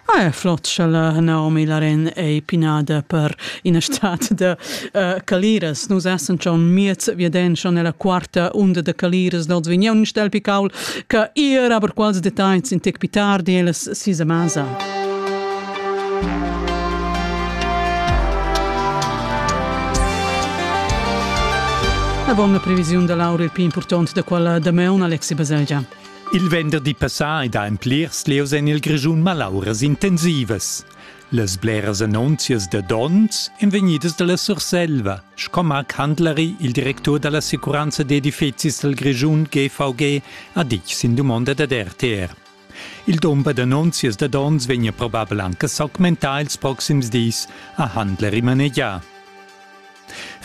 Ah, è flot sch'ella Naomi Larin ei pinada per ina stat da uh, caliras. Nus essen schon miez viaden schon nella quarta unda de caliras dals vigneun stel picaul che ir aber quals details in tec pitardi elas sisa masa. La bona previsiun da Laura il più importante da quella da Meon Alexi Baselgia. Il venderdi passà ed ha en plirs lieus en il Grischun malauras intensivas. Las bleras annunzias da donns èn vegnidas da la Surselva, sco Marc Handlari, il directur da l'assicuranza d'edifizis dal Grischun GVG, ha ditg sin dumonda dad RTR. Il dumber d'annunzias da donns vegnia probabel anche s'augmentar ils proxims dis, ha Handlari manegià.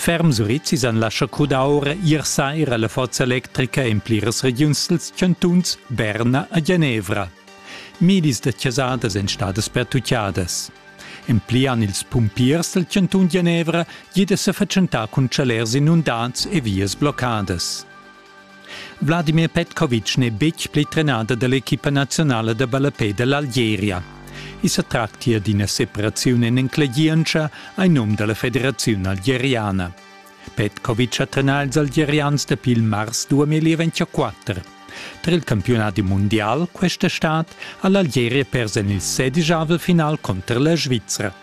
Ferm Surizis han lascha cudaura ier saira la forza electrica en pliras regiuns dals chantuns Berna e Genevra. Milis da chasadas èn stadas pertutgadas. En pli han ils pumpiers dal chantun Genevra gida sa fatschentà cun chalers inundats e vias bloccadas. Vladimir Petkovic n'è betg pli trenader da l'equipa nazionala da ballapè da l'Algeria. I sa tractia d'ina separaziun en enclegientscha ai num da la federaziun algeriana. Petkovic ha trenà ils algerians dapi il mars 2024. Tar il campiunadi mundial questa stad ha l'Algeria pers en il sedijavel final cunter la Svizra.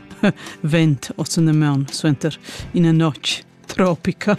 vent osannamaun suenter ina notg tropica.